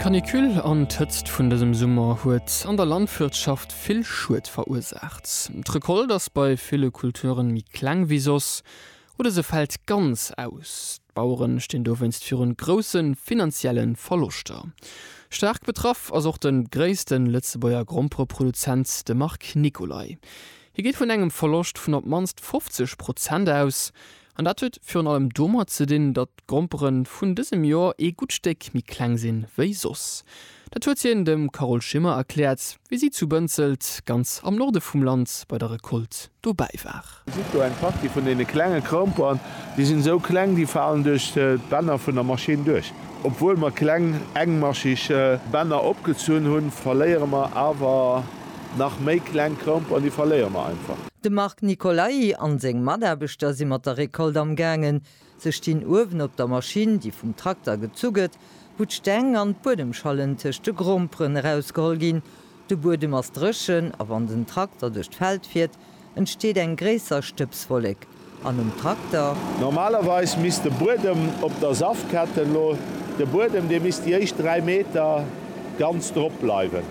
D'Canicule an d'Hëtzt vun dësem Summer huet an der Landwirtschaft vill Schued verursaacht. D'Recolte ass bei ville Kulturen méi kleng wéi soss oder se fält ganz aus. D'Baueren stinn dowéinst virun grousse finanzielle Verloschter. Staark betraff ass och de gréisste Lëtzebuerger Grompereproduzent, de Marc Nicolay. Hie geet vun engem Verloscht vun op d'mannst 50 Prozent aus. An dat huet virun allem domat ze dinn, datt d'Grompere vun dësem Joer ee gutt Stéck méi kleng sinn, wéi soss. Dat huet hien dem Carole Schimmer erkläert, wéi si zu Bënzelt, ganz am Norde vum Land, bei der Recolte dobäi war. Dir gesitt do eng Partie vun deene klenge Gromperen. Déi sinn esou kleng, déi falen duerch d'Bänner vun der Maschinn duerch. Obwuel mer kleng, engmascheg Bänner opgezunn hunn, verléiere mer awer. Nach méi kleng Kromp an déi verléiere mer einfach. De Marc Nicolai an seng Mataarbechter si mat der Récolte am gaangen. Se stinn uewen op der Maschinn, déi vum Trakter gezu gëtt, wou d'Steng an d'Buedemschallen tëscht de Gromperen erausgeholl ginn. De Buedem ass dréchen a wann den Trakter duerch d'Feld fiert, entsteet eng gréisser Stëbswollek an um Trakter. Normalerweis misst de Buedem op der Saftketten lo, de Buedem dee misst déi éischt 3 Meter ganz drop bleiwen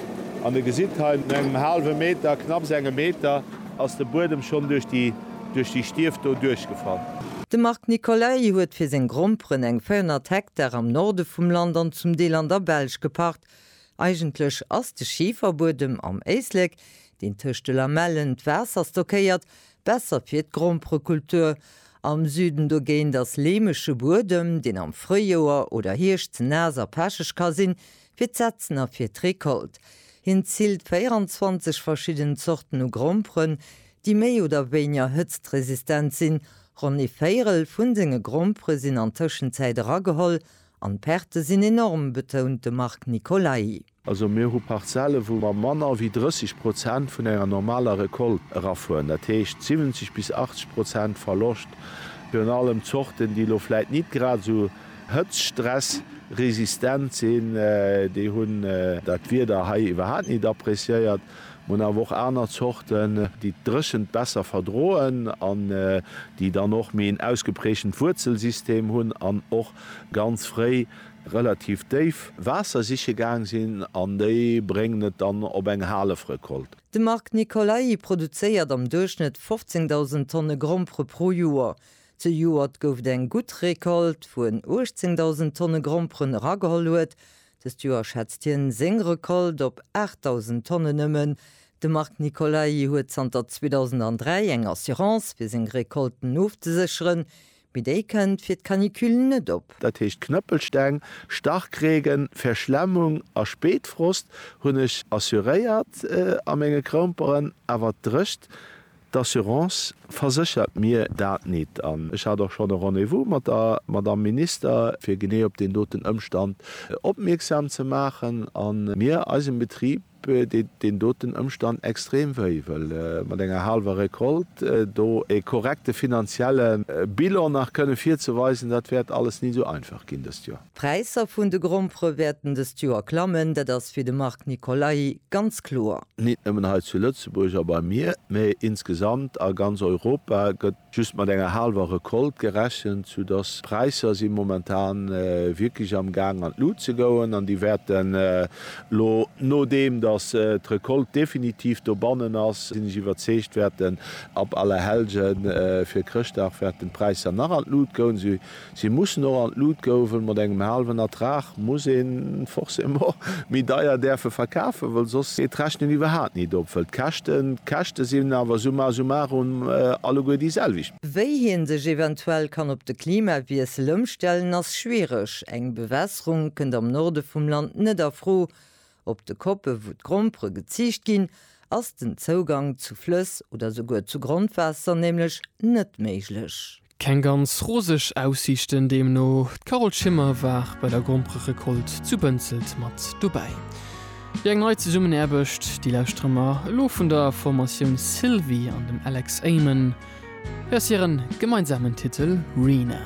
an der gesitt hei no engem haalwe Meter, knapps engem Meter, ass de Buedem schonn duerch déi duerch déi Stief do duerchgefall. De Marc Nicolay huet fir seng Gromperen eng 400 Hektar am Norde vum Land an zum Deel an der Belsch gepacht. Eigentlech ass de Schiferbuedem am Éislek deen tëscht de Lamellen d'Waasser stockéiert, besser fir d'Gromperekultur. Am Süden dogéint ass leemege Buedem, deen am Fréijoer oder Hierscht ze naass a pecheg ka sinn, fir d'Setzen a fir d'Recolt. Hien zilt 24 verschidden Zorten u Gromperen, déi méi oder wéinger hëtztresistent sinn. Ronn ee Véierel vun senge Grompere sinn an Tëschenzäit erageholl an d'Perte sinn enorm, betount de Marc Nicolai. Also mir hu Parzelle wou mer manner wéi 30 Prozent vun enger normaler Recolte erafueren, dat heescht 70 bis 80 Prozent Verloscht, virun allem Zorten déi elo vläit nit grad esou hëtztstressresistent sinn, déi hunn dat Wieder hei iwwerhaapt nit appreciéiert. Mer hunn awer och aner Zorten déi d'Dréchent besser verdroen an déi dann och méi en ausgeprägtent Wuerzelsystem hunn an och ganz fréi, relativ déif Waasser siche gaang sinn an déi bréngen et dann op eng Halefrecolte. De Marc Nicolai produzéiert am Duerchschnëtt 15.000 Tonne Grompere pro Joer. Zejoert gouf et eng gutt Recolte, wou en 18.000 Tonne Gromperen erageholl huet. Dëst Joer schätzt hien seng Recolte op 8.000 Tonnen nëmmen. De Marc Nicolai huet zanter 2003 eng Assurance, fir seng Recolten ofzesécheren. Mee déi kënnt fir d'Canicule net op. Dat heescht Knëppelsteng, Starkregen, Verschlemmung a Spéitfrost hunn ech assuréiert a menge Kroumperen, awer d'Drécht d'Assurance verséchert mir dat nit. An ech hat och schonn e Rendez-vous mat der Madamm Minister, fir genee op deen doten Ëmstand opmierksam ze maachen a mir eisem Betrib deet deen doten Ëmstand extrem wéi, wëll mat enger haalwer Recolte do ee korrekte finanzielle Bilan nach kënne virzeweisen, dat wäert alles ni esou einfach ginn dëst Joer. D'Präisser vun de Grompere wäerten dëst Joer klammen, dat ass fir de Marc Nicolai ganz kloer. Nit nëmmen hei zu Lëtzebuerg a bei mir, mee insgesamt a ganz Europa gëtt Just mat enger haalwer Recolte gerechent, sou dass d'Präisser si momentan wierklech am Gaang an d'Lut ze goen an déi wäerten elo, nodeem dass d'Recolte definitiv dobannen ass, sinn ech iwwerzeegt, wäerten ab Allerhellgen fir Chrëschtdag wäerten d'Präisser nach an d'Lut goen, Si mussen och an d'Lut gouwen. Mat engem haalwen Ertrag muss een forcément méi deier däerfe verkafen, wëll soss geet d'Rechnen iwwerhaat nit op. Wëll d'Käschten d'Käschte sinn, awer summa summarum alleguer déi selwecht. Wéi hien sech eventuell kann op de Klimawiessel ëmstellen ass schwiereg. Eng Bewässerung kënnt am Norde vum Land net a Fro. Op de Koppe wou d'Grompere geziicht ginn, ass den Zougang zu Flëss oder souguer zu Grondwaasser nämlech net méiglech. Keng ganz roseg Aussiichten deemno. D'Carole Schimmer war bei der Grompererecolte zu Bënzelt mat dobäi. Wéi eng nei Zesummenaarbecht, déi lauschtere mer elo vun der Formatioun Sylvi an dem Alex Amen. Hei ass hiren gemeinsamen Titel Rena.